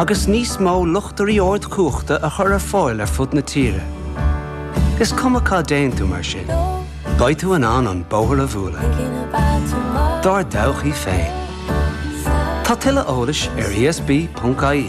agus níos mó luchtairí ardchumhachta a chur ar fáil ar fud na tíre. Is cuma cá dtéann tú mar sin, beidh tú in ann an bóthar a bhualadh dár dtodhchaí féin. Tá tuilleadh eolais ar ESB.ie.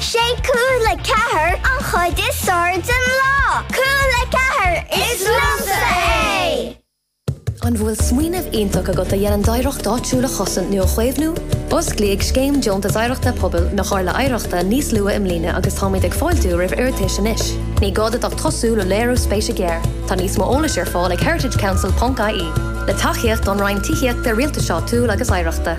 Sé Cúla4 an chuid is fearr den lá. Cúla4, is liomsa é! An bhfuil smaoineamh iontach agat a dhéanann d'oidhreacht áitiúil a chosaint nó a chaomhnú? Osclaíodh Scéim Deontas Oidhreachta Pobail na Comhairle Oidhreachta níos luath i mbliana agus táimid ag fáiltiú roimh iarratais anois. Ní gá duit ach tosú le léiriú spéise gearr. Tá níos mó eolais ar fáil ag heritagecouncil.ie. Le tacaíocht ón Roinn Tithíochta, Rialtais Áitiúil agus Oidhreachta.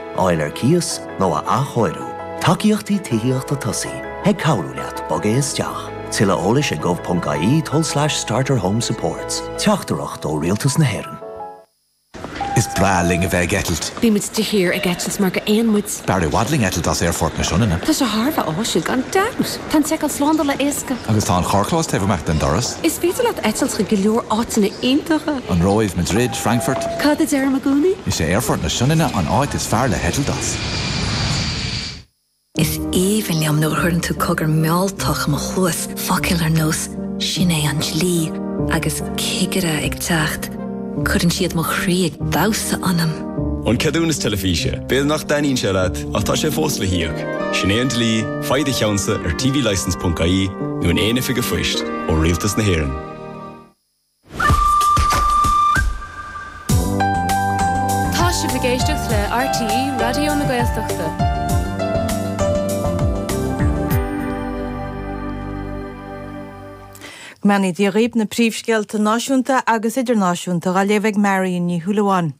fháil ar cíos nó a athchóiriú. Tacaíochtaí Tithíochta Tosaigh ag cabhrú leat bogadh isteach. Tuilleadh eolais ag gov.ie tul slash starterhomesupports. Teachtaireacht ó Rialtas na hÉireann. Is breá linn a bheith ag eitilt. Bímid de shíor ag eitilt mar dhá éan muid. Is fearr i bhfad linn eitilt as Aerfort na Sionainne. Tá sé thar a bheith áisiúil gan dabht! Tá an tseiceáil slándála éasca. Agus tá an carrchlós taobh amuigh den doras. Is féidir leat eitilt chuig go leor áiteanna iontacha. An Róimh, Madrid, Frankfurt. Cad a deirim i gcónaí? Is é Aerfort na Sionainne an áit is fearr le heitilt as. Is aoibhinn liom nuair a chuireann tú cogar mealltach i mo chluas, focail ar nós 'Sin é an dlí' agus 'Cigire ag teacht'. Cuireann siad mo chroí ag damhsa ionam. An ceadúnas teilifíse, b'fhéidir nach dtaitníonn sé leat ach tá sé fós le híoc. Sin é an dlí, faigh do cheannsa ar tvlicence.ie nó in aon oifig phoist ó Rialtas na hÉireann. Tá sibh ag éisteacht le RTÉ Raidió na Gaeltachta. Go mbeannaí Dia dhaoib na príomhscéalta náisiúnta agus idirnáisiúnta dhá léamh ag Marion Ní Shúilleabháin.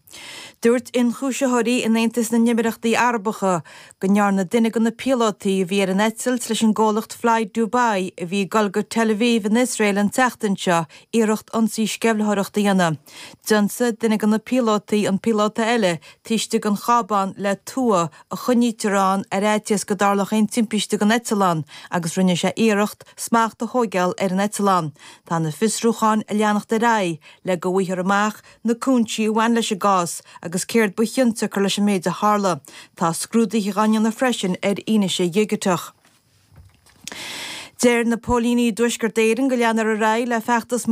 Dúirt ionchúisitheoirí in Aontas na nÉimíríochtaí Arabacha go ndearna duine de na píolótaí a bhí ar an eitilt leis an gcomhlacht Fly Dubai a bhí ag dul go Tel Aviv in Iosrael an tseachtain seo iarracht ionsaí sceimhlitheoireachta a dhéanamh. D'ionsaigh duine de na píolótaí an píolóta eile, taobh istigh den chábán le tua, a choinnítear ann ar fhaitíos go dtarlódh aon timpiste don eitleán, agus rinne sé iarracht smacht a thóigeáil ar an eitleán. Tá na fiosrúcháin ag leanacht ar aghaidh, le go bhfaightear amach na cúinsí a bhain leis an gcás agus céard ba chionsiocair leis an méid a tharla. Tá scrúduithe á ndéanamh freisin ar fhianaise dhigiteach. Deir na póilíní i dTuaisceart Éireann go leanfar ar aghaidh le feachtas